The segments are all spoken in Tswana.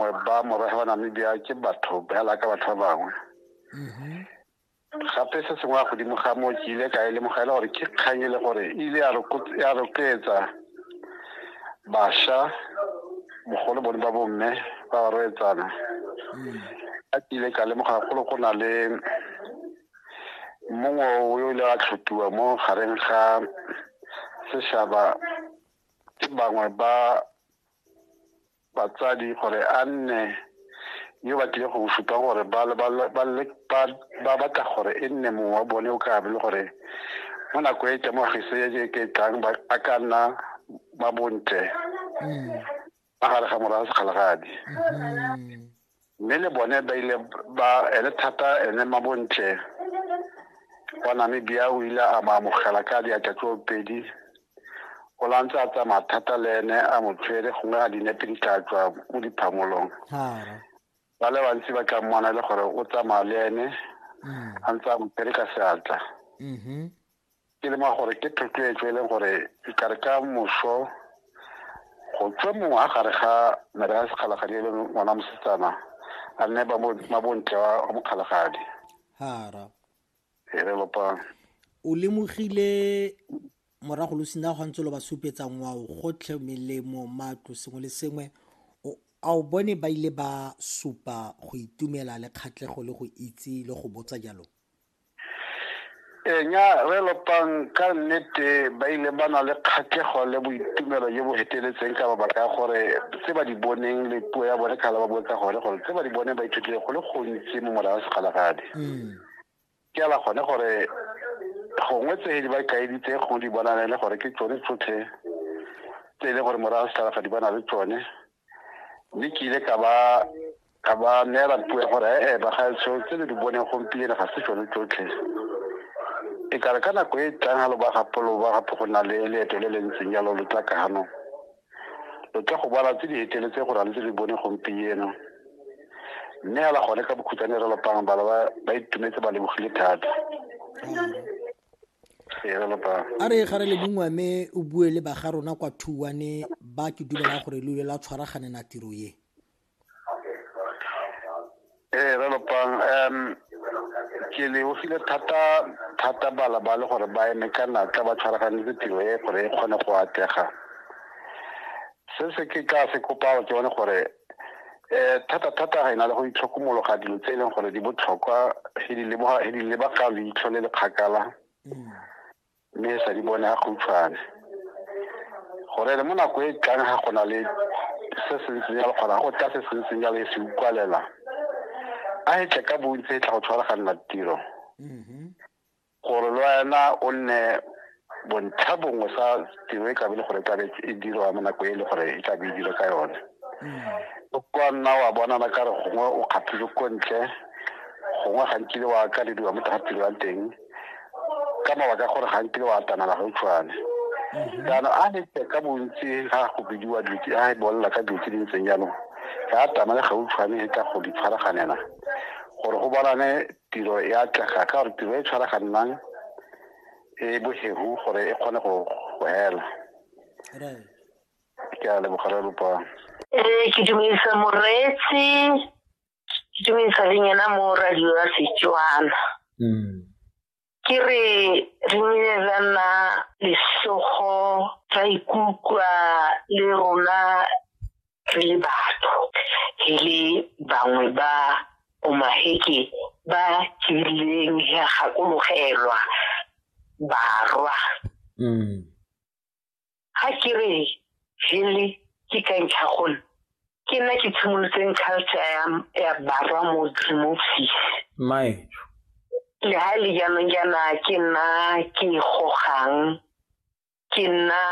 gore ba morafe wa namibia ke batho bela ka batho ba bangwe mm-hmm. gape se sengwe ya godimo ga moo ke ile ka e lemoga e le gore ke kgang e le gore e ile ya rotloetsa bašwa bogolo bone ba bomme ba ba roetsana mm. a ke ile ka lemoga golo go na le mongwe o yo ile a tlhotiwa mo gareng ga sešaba ke bangwe ba batsadi gore a nne yo ba tlile go supa gore ba batla gore e nne mongwe wa bone o ka be le gore mo nako e temogiso e ke tlang ba ka nna ba bontle mm. magare ga morago segalagadi mm-hmm. mme le bone ba ile ba ele thata ene mabontle wa namibia o ile a ba amogela ka diatla tse pedi o la ntse a tsamaya thata le ene a mo tshwere gongwe a dinepe di tla tswa mo diphamolong ba le bantsi ba tla mmona e le gore o tsamaya le ene mm. a ntse a mo tshwere ka seatla mm-hmm. ke le ma gore ke thotloetso e leng gore ikare ka moso go tswe mongwe a gare ga mere ya sekgalagadi e leng ngwana mosetsana a nne mabontle wa mokgalagadi hara e re lopang o lemogile morago lo sina go ntse lo ba supetsa ngwao gotlhe melemo matlo sengwe le sengwe a o bone ba ile ba supa go itumela le kgatlhego le go itse le go botsa jalo Ee, nya re lopang ka nnete ba ile ba na le kgatlhego le boitumelo jo bo feteletseng ka mabaka a gore tse ba di boneng le puo ya bone kgala ba bue ka gone gore tse ba di boneng ba ithutile go le gontsi mo morago segalagadi mm. ke ala gone gore gongwe tse di ba kaeditse gongwe di bonane le gore ke tsone tsotlhe tse e leng gore morago segalagadi ba na le tsone mme ke ile ka ba ka ba neela puo ya gore ee bagaetsho tse le di boneng gompieno ga se tsone tsotlhe e kare ka nako e tlang ga lo ba gape lo ba gape go na le leeto le le ntseng jalo lo tla kano lo tla go bala tse di eteletse gore a le tse di bone gompieno mme ala gone ka bokhutsane re lopang bala ba itumetse ba lebogile thata a re ga re le bongwe mme o bue le baga rona kwa thuwane ba ke dumelang gore lo ile la tshwaraganela tiro ye ee re lopang um ke lebogile thata thata bala ba le gore ba eme ka natla ba tshwaraganetse tiro e gore e kgone go atlega se se ke ka se kopao ke bone gore um thata thata ga e na le go itlhokomologa dilo tse e leng gore di botlhokwa e di lebaga leitlho le le kgakala mm. mme e sa di bone a khutshwane gore le mo nako e tlang ga gona le se se ntseng jalo kgona go tla se se ntseng jalo e se ukwalela a e tle ka bontsi e tla go tshwaraganela tiro mm-hmm. gore le wena o nne bontlha bongwe sa tiro e tlabe le gore e tlabe e dirwa mo nako e le gore e tlabe e dira ka yone mm-hmm. o kwa nna wa bonana ka re gongwe o kgathile ko ntle gongwe gantsi le wa kalediwa mo tiro ya teng ka mabaka gore ga nkile wa atamela ga utshwane mhm. jaanong a nete ka bontsi ga go bidiwa dilo tse a e bolela ka dilo tse di ntseng jaanong ga atamele ga utshwane e ka go di tshwaraganela gore go bonane tiro e atlega ka gore tiro e tshwaraganang e bohegu gore e kgone go hela ke a lebogare lopang ee ke dumedisa moreetsi ke tlo isa le nyena mo radio ya setswana mm. ke re re nile ra nna lesogo ra ikutlwa le rona re le batho e le bangwe ba omaheke ba tsileng ya gakologelwa barwa mm. ga ke re hele ke ka ntlha gone ke nna ke tshimolotseng culture ya ya barwa mo dimofisi mae le ha le jaanong jaana ke nna ke gogang ke nna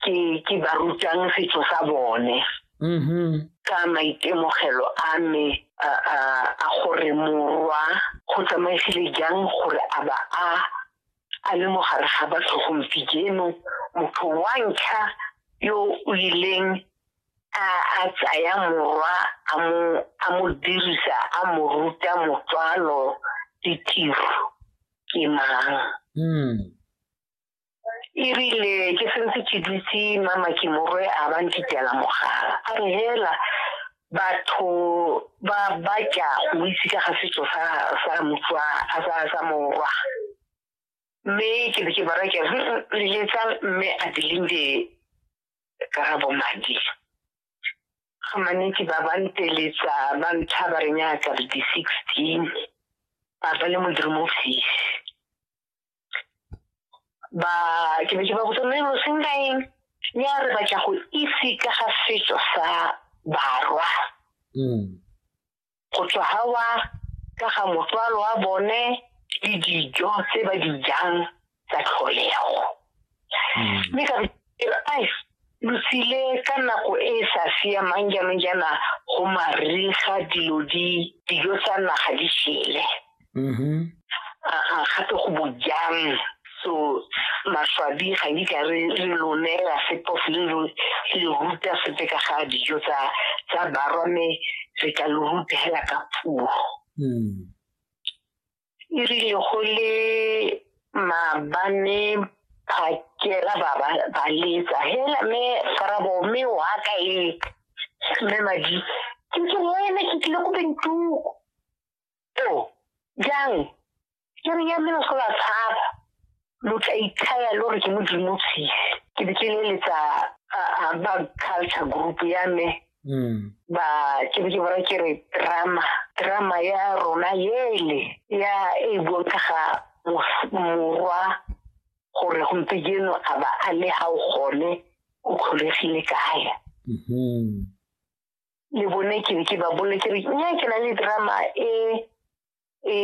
ke ke ba rutang setso sa bone mm-hmm. ka maitemogelo a me a gore morwa go tsamaisile jang gore a ba a a le mogare ga batho gompieno motho wa ntlha yo o ileng a tsaya morwa a mo dirisa a mo ruta motswalo ditiro ke mang hmm. erile ke sentse ke dutse mama ke morwe a ba ntitela mogala a re hela batho ba batla o itse ka ga setso sa sa motswa a sa sa morwa mme ke be ke bara ke leletsa mme a dilinde ka ga bomadi ga manetsi ba ba nteletsa ba ntlha ba re nyaka di sixteen ba ba le modimo ofisi ba ke ne ke ba botsa mme lo senka eng ya re batla go itse ka ga setso sa barwa mm. go tswa gawa ka ga motswalo wa bone le dijo tse ba di jang tsa tlholego mme ka re ai lo tsile ka nako e e sa siamang jaanong jaana go mariga dilo di dijo tsa naga di shele mm-hmm. aa gape go bojang so maswabi ga di ka re re lo neela sepo le lo le ruta sepe ka ga dijo tsa tsa barwa mme re tla lo ruta hela ka puo mm. e rile go le maabane phakela ba ba letsa hela me farabo me wa ka e me madi ke ke wena ke tlile ko bentuko to jang ke re ya me go la tshaba lo tla ithaya lo re ke modimo tshisi ke be ke leletsa ba culture group ya me hmm. ba ke be ke bara ke re drama drama ya rona yele ya e buang ka ga morwa gore gompieno a ba a le ga o gone o kgolegile kae hmm. le bone ke be ke ba bole ke re nya ke na le drama e e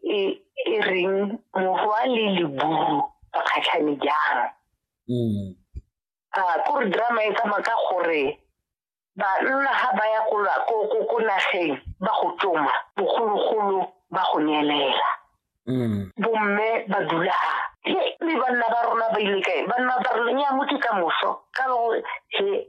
e e reng mohwa le leburu ba kgatlhane jang mm. a ah, kore drama e tsamaya ka gore banna ga ba ya ko nageng ba go tsoma bogologolo ba go neelela mm. bomme ba dula ga le banna ba rona ba ile kae banna ba rona ya motse ka moso ka gore he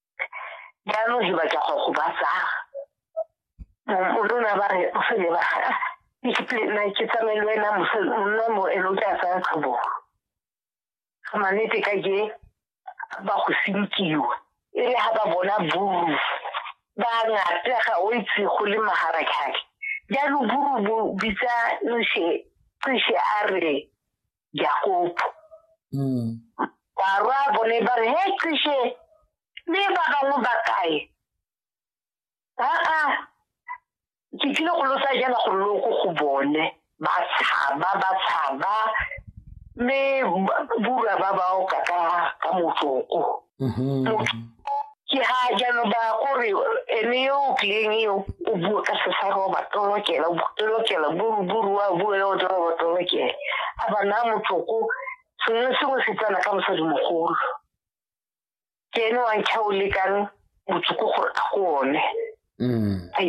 jaanong ke batla go go batsa morona ba re o se ne ba na ke tsamaye le wena monna mo e lo tla tsaya tlhobo ga manete ka ke ba go sinkiwa e le ga ba bona buru ba ngata ga o itse go le maharakgake jaanong buru bo bitsa nshe nshe a re Jakopo. Mm. Barwa bone ba re he qishe le ba bangwe ba kae. Aa ke tlile go lotsa jana go loko go bone ba tshaba ba tshaba me bura ba bao ka ka ka motsoko. Mhm. ke ga jaanong ba kore ene yo o tlileng eo o bue ka sesa roba tolokela tolokela buruburu wa bue yo toroba tolokela a ba naa motloko sengwe sengwe se tsena ka mosadi mogolo ke ene wa ntlha o lekang motsoko gore a go one mm. a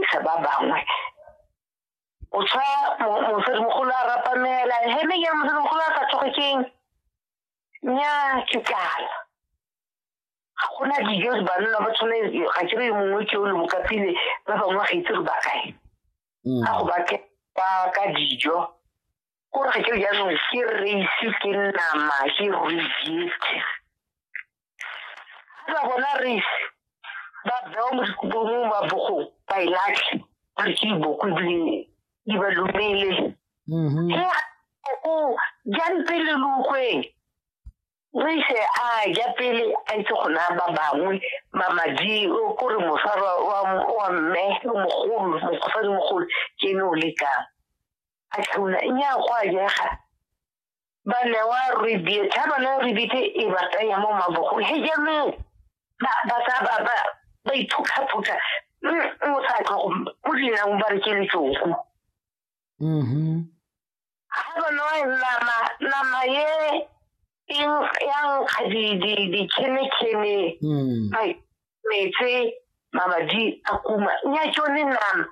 isa ba bangwe o tshwa mosadi mogolo a rapamela hene ke mosadimogolo a sa tsoge keng nya ke tsala ga gona dijo re banna ba tshwane ga ke re mongwe ke o le bokapile ba bangwe ga itse re ba kae mm. ga go ba ke ba ka dijo kore ga ke jaanong ke reise ke nama ke rejete ga ba bona reise ba bewa mo dikobong ba bogong ba e latlhe ba re ke diboko ebile di ba lumele mm-hmm. he o jang pele lukgweng re ise a ja pele a itse go naya ba bangwe mamadi ko re mosara wa mme mogolo mosadi mogolo ke ene o lekang a tlhauna nnyaa go a jega ba newa rebate ha ba newa rebate e ba tsaya mo mabogong he jaanong ba ba tsa ba ba ba iphuthaphutha o sa tlo go dinang ba re ke letsoku mm-hmm. ha ba newa nama nama ye eng ya nkga dikhenekene mm. metse mabadi a kuma nya tsone nama